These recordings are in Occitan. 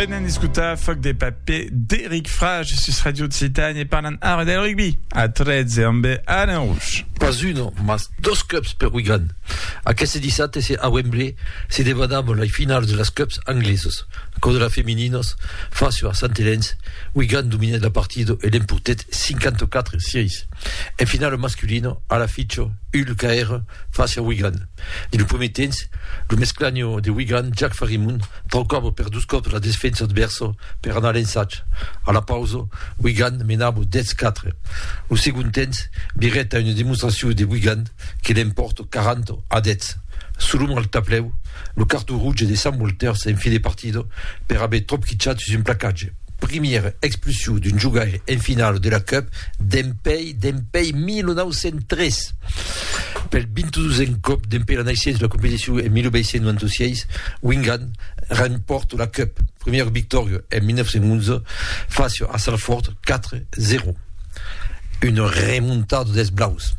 Venen escutar Foc de paper d'Eric Frage sus Radio Occitane e parlan ara del rugby a 13 amb Alain Rouge. Pas un, mas dos cups per Wigan. Aqueste dissabte se a Wembley se debanam lei finals de las cups anglesos. Cò de las femininas, facio a Sant Elens, Wigan dominèt la partida e l'empurtèt 54 sièis. En finala masculina, Alaficho, Hull Caire, facia Wigan. Dins lo primièr temps, lo mesclanho de Wigan, Jack Farimund, traucava per dos còps la desfensa advèrsa per anar a l'ensatge. A la pausa, Wigan menava 10-4. Lo segond temps, Birreta una demonstracion de Wigan que l'empòrta 40 a 10. Sul long al tablèu, lo carton rouge de Sam Walters en fin de partida per aver tròp quichat sus un placatge. Primièr expulsion d'un jogaire en finala de la Cup dempèi dempèi 1903. Pel 22n còp dempèi la naissença de la competicion en 1896, Wingan rempòrt la Cup, primièra victòria en 1911 fàcia a Salford 4-0. Una remontada dels Blaus.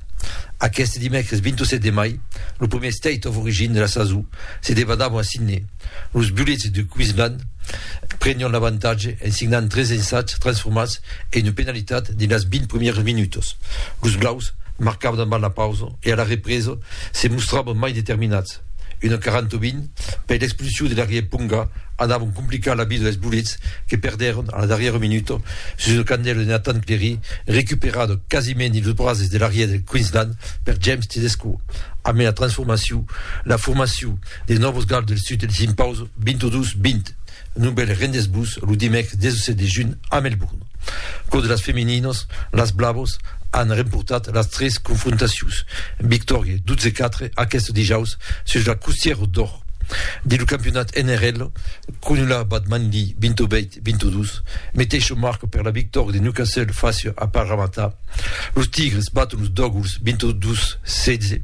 Aqueste dimècres 27 de mai, lo primièr State of Origin de la sason se debadava a Sydney. Los bulets de Queensland prenián l'avantatge en signant tres ensats transformats e una penalitat dins las 20 primièras minutas. Los blaus marcavan avant la pausa e a la represa se mostravan mai determinats. Una 40-20 per l'expulsion de l'arrièr Ponga anavan complicar la vida dels bulets que perdèron a la darrièra minuta sus una candèla de Nathan Clery recuperada quasiment dins los brases de l'arrièr del Queensland per James Tedesco. Amé la transformacion, la formacion De Nòvos Gals del Sud els impauso 22-20 non bèl rendesbús lo dimècres 17 de junh a Melbourne. Pro de las femininos, las Blavos an remportat las tres confrontacions, victòria 12-4 aqueste dijaus sus la Custièro d'Or. Dins lo campionat NRL, Cronulla bat Manly 28-22, meteisho marco per la victòria de Newcastle fàcia a Parramatta. Los Tigres baton los Dògols 22-16.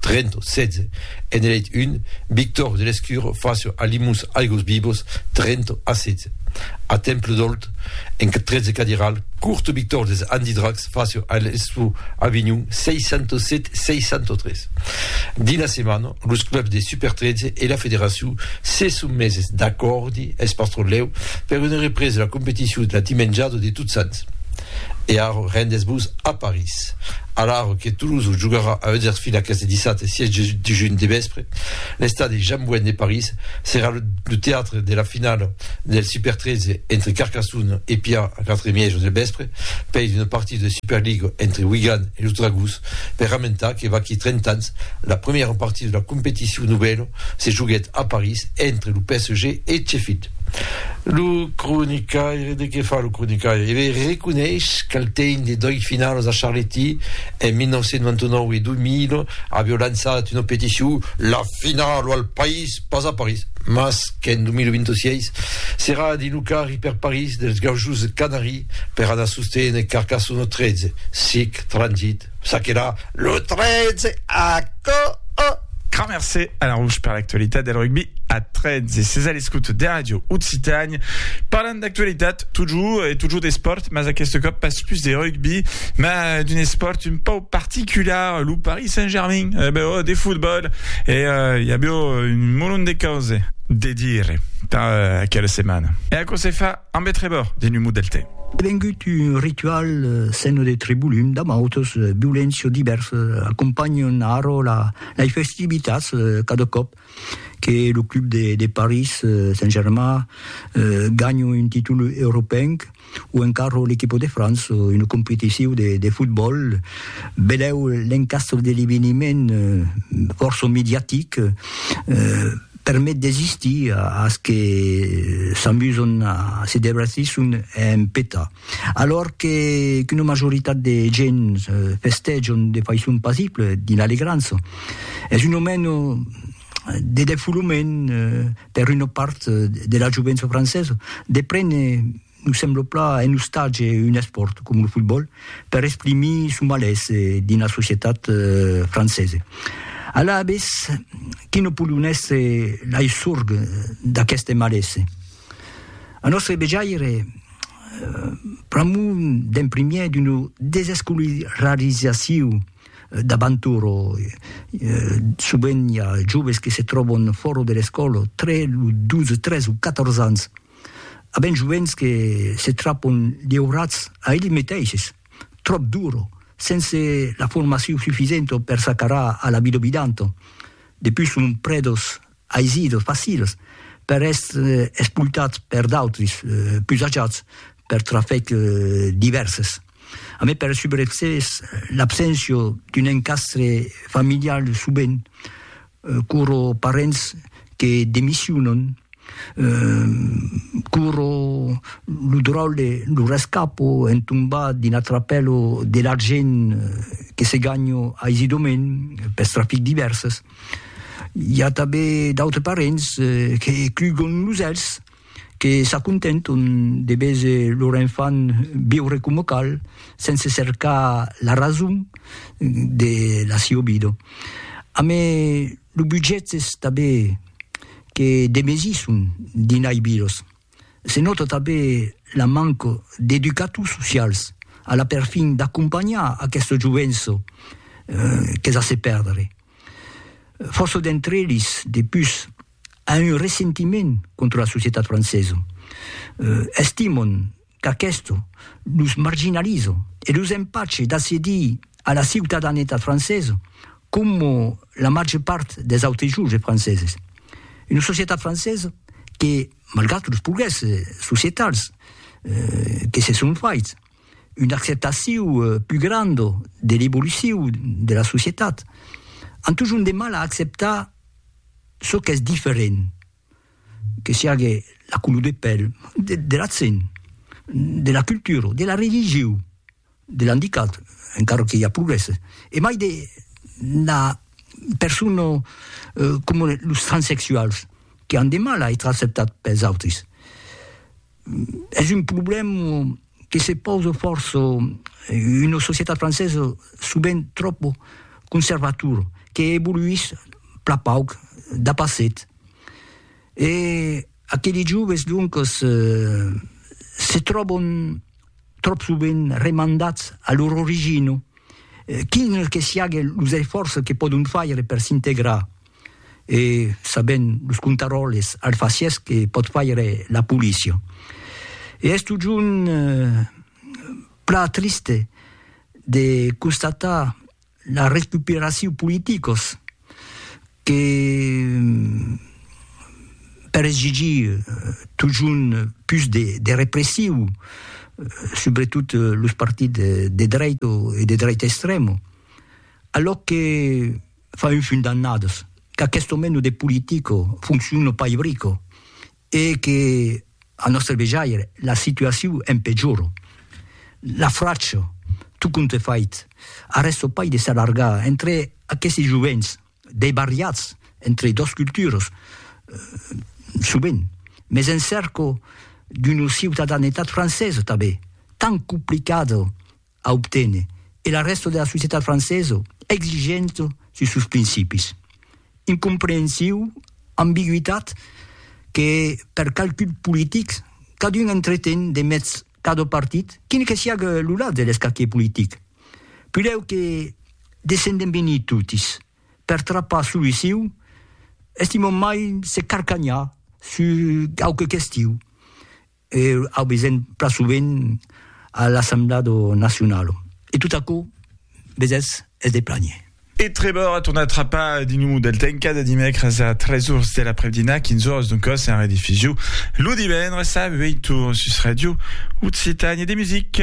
Trento, 16, en eleit un, Victor de Lescure facio alimus aigos vivos, Trento, a 16. A Temple d'Olt, en 13 cadiral, Curto Victor des Andidracs facio a l'Estu Avinhon, 607, 603. Dins la setmana, los clubs de Super 13 e la federacion se son meses d'acòrdi, es pas tròp lèu, per una represa de la competicion la dimenjada de Totsants. E arro rendes-vos a París. Alarro que Toulouse jogarà a Huddersfield aqueste dissabte 6 de junh de vèspre, l'estadi Jean Bouin de París serà lo teatre de la finala del Super 13 entre Carcassonne e Pià a 4 e mièja del vèspre, pei d'una partida de Superliga entre Wigan e los Dragons per ramentar que vaquí 30 ans la premièra partida de la competicion novèla se joguèt a París entre lo PSG e Sheffield. Lo cronicaire, de qué fa lo cronicaire? E ben, reconeish qu'al tein de dois finalos a Charléty, en 1999 e 2000, avió lançat una peticion La finalo al País, pas a París, mas qu'en 2026 serà dins lo carri per París dels Gaujos de Canari per anar sosténer Carcassona 13, sic, Transit, Ça qu'era lo 13 aco. Grand mercé a la Rouge per l'actualitat del rugbi a 13. Ses a l'escoute de Radio Occitània. Parlant d'actualitat, totjor e totjor d'espòrt, mas aqueste còp pas pus de rugbi, ma d'un espòrt un pau particular, lo Paris Saint-Germain, eh ben, oh, de fotbòl, e uh, i a bèu un molon de cause de dire per uh, aquela setmana. E aquò se fa Amb eth rebor d'un humo del tè. Devengut un ritual sèn de Tribulum, damb autos viulenci o divèrs, acompanhen arro lai festivitats cada còp que lo club de París Saint-Germain ganha un títol europenc o encara l'equipa de França en una competicion de fotbòl. Velèu l'encastre de l'eveniment, fòrça mediatic, permet d'existir as que s'amuson a se debratir son en peta. Alòr que qu'una majoritat de gents festèjon de faiçon pasible dins l'alegrança, es un aument de defolament per una part de la jovença francesa de prene Nos sembla pla en ostatge un espòrt com lo fotbòl per exprimir son malés dins la societat francesa. Alavetz, qui no pòdon èstre lai sorg d'aqueste malés? A nòstre vejaire, pr'amor d'en primièr d'una desescolarizacion d'abantur, sovent i a joves que se tròban fòra de l'escòla tre los 12, 13 o 14 ans, A ben joents que se trapon liurats a elli meteishes, tròp duro, sense la formacion sufisento per s'acarar a la vida obidanto. Depus son predos aisidos, facils, per èstre espoltats per d'autris, pus ajats, per trafècs divèrses. A mai per subreccès, l'abséncia d'un encastre familial subent curo parents que demissionan, curo lo dròlle, lo rescapo en tombar dins la trapèla de l'argent que se ganha aisidament pels trafics divèrses. I a tanben d'autres parents que clugan los elhs. que s'acontenton de véser lor enfant viure coma cal, sense cercar la rason de la siua vida. Amé lo budget es tanben que demesisson dins lai vilas. Se nòta tanben la manca d'educators socials a la perfin d'acompanhar aquesta jovença qu'es a se perdre. Fòrça d'entre eles, de pus, a un ressentiment contra la societat francesa, estimon qu'aquesto los marginaliza e los empache d'accedir a la ciutadanetat francesa coma la màger part dels autres joves franceses. Una societat francesa que, malgrat los progrèsses societals que se son faits, una acceptaciu plus granda de l'evoluciu de la societat, an totjorn de mal a acceptar çò qu'es diferent, que siague la color de pèl, de l'accent, de la cultura, de la religiu, de l'andicat, encara que i a progrèsses, e mai de la persona coma los transsexuals, qu'an de mal a èstre acceptats pels autris. Es un problem que se pausa fòrça una societat francesa sovent tròp conservatora que evoluís plan pauc dab passet. E aqueli joves doncas se tròban tròp sovent remandats a lor origina, quin que siague los esfòrces que pòdon faire per s'integrar. e sabent los contaròles alfacièrs que pòt faire la polícia. E es totjorn plan triste de constatar la recuperacion politicos que per exigir totjorn pus de repressiu subretot los partits de dreit e de dreit extrèma, alòc que Fa un fum d'annadas qu'aquesto meno de politico fonciona pas ibrico e que, a nòstre vejaire, la situaciu en pejora. La fracha, tot compte fait, arrèsta pas de s'allargar entre aquesti jovents deibarriats entre dos culturas, sovent, mès en cerca d'una ciutadanetat francesa tanben, tan complicada a obténer e la rèsta de la societat francesa exigenta sus sos principis. Incomprehensiu, ambigüitat que per calculs politics cadun entreten de mèths cada partit, quin que siague lo lat de l'escaquier politic. Pudèu que descendem venir totis per trapar soluciu, estimam mai se carcanhar sus quauque question E au vesent plan sovent a l'Assemblada Nacionala. E tot aquò, vesètz, es de planher. E Trevor a tornat trapar Dinu del Tenca de dimècres a tres ors de l'après-dinar, 15 ors doncòs, en rediffusiu lo divendres a ueit ors sus Ràdio Occitània de Music.